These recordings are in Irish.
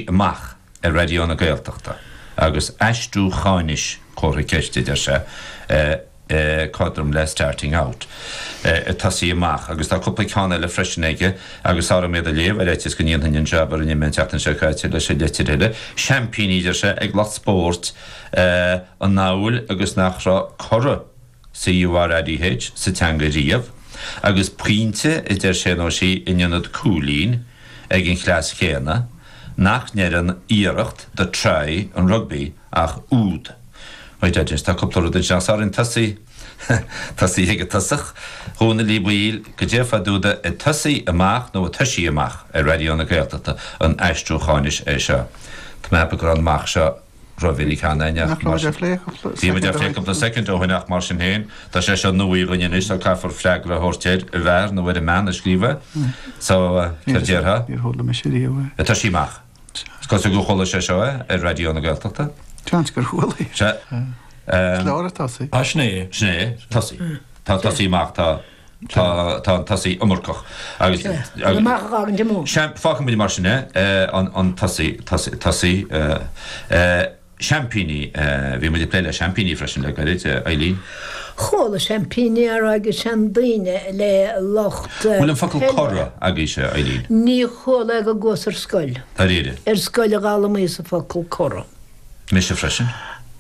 amach ar Raidió na Gaeltachta agus aistriúcháinis comhartha ceiste, deir sé, cothrom le starting out, ag tosaí amach. Agus tá cúpla ceann eile freisin aige agus tá orm iad a léamh ar fhaitíos go ndéanfainn an jab a rinne mé an tseachtain seo caite leis an litir eile. Seaimpíní, deir sé, ag lucht spóirt amhail agus nach raibh curadh. CURADH sa teanga riamh agus pointe a deir sé nó sí in ionad cúilín ag an chleas chéanna nach ndeireann iarracht do try an rugbaí ach úd wait I just tá cúpla rud ansin ach sorry an tosaí tosaí ag an tosach Dhónaill Uí Bhaoill goidé fá dtaobh de ag tosaí amach nó ag toisí amach ar Raidió na Gaeltachta an aistriúcháinis é seo Tá mé ag ceapadh go raibh an amach seo rómhinic cheana againn ach mar sin Bhí muid ag plé cúpla soicind ó shin ach mar sin féin tá sé seo nua againn anois so caithfear freagra a thabhairt ar an bhfear nó ar an mbean a scríobh é so céard déarfá? Níor chuala mise riamh é. Tosaí amach. Is cosúil gur chuala sé seo é ar Raidió na Gaeltachta. Seans gur chuala é. Sea. Is leor ag tosaí. Sea. Sin é. Sin é. Tosaí. Tá tosaí maith tá. Tá an tosaí iomarcach agus fágfaidh muid mar sin é, an tosaí seaimpíní. Bhí muid ag plé le seaimpíní freisin le gairid, Eileen. Chuala seaimpíní á rá ag seandaoine le lucht peile. Bhfuil an focal curadh agaibhse, Eileen? Níor chuala é go gcuas ar scoil. Dáiríre? Ar scoil a d'fhoghlaimíos an focal curadh. Mise freisin.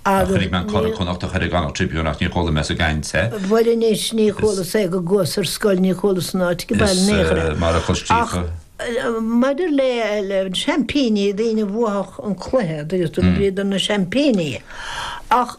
Ach chonaic mé an Curadh Connachtach ar an gConnacht Tribune ach níor chuala mé sa gcaint é. Bhuel anois ní chualas é go gcuas ar scoil, ní chualas san áit ag baile in aon chor. Is mar a chloistí. Maidir le seaimpíní, daoine a bhuafadh an cluiche, bhíodar na seaimpíní. Ach.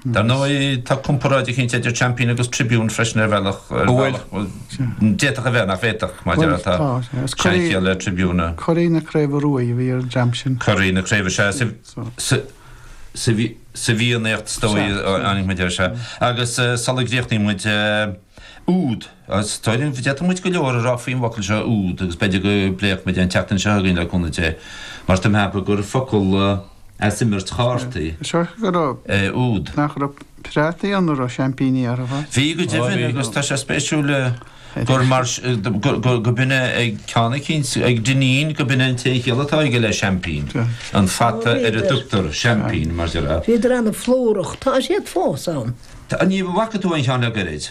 Dar ndóigh tá comparáid eicínt idir Champion agus Tribune freisin ar bhealach. An bhfuil? D'fhéadfadh a bheith nach bhféadfadh mar deir tá seanchiall le Tribune. Curaidh na Craoibhe Rua a bhí ar an dream sin. Curaidh na Craoibhe, sea. Sa bhFiannaíocht is dóigh a tháinig muid air, sea. Agus sula gcríochnaíonn muid úd. Is dóigh linn go bhféadfadh muid go leor a rá faoin bhfocal seo úd agus b'fhéidir go bpléifeadh muid é an tseachtain seo chugainn le cúnamh Dé, mar tá mé ag ceapadh gur focal as imirt chártaí é úd. Nach raibh prátaí ann a raibh seaimpíní orthu, a. Bhí go deimhin agus tá sé spéisiúil gur mar go b'in é ag ceann eicínt, ag Dinneen, go b'in é an t-aon chiall atá aige le seaimpín, an fata ar a dtugtar seaimpín mar. Bhíodar ana-phlúrach, tá siad fós ann. An bhfaca tú aon cheann le goirid?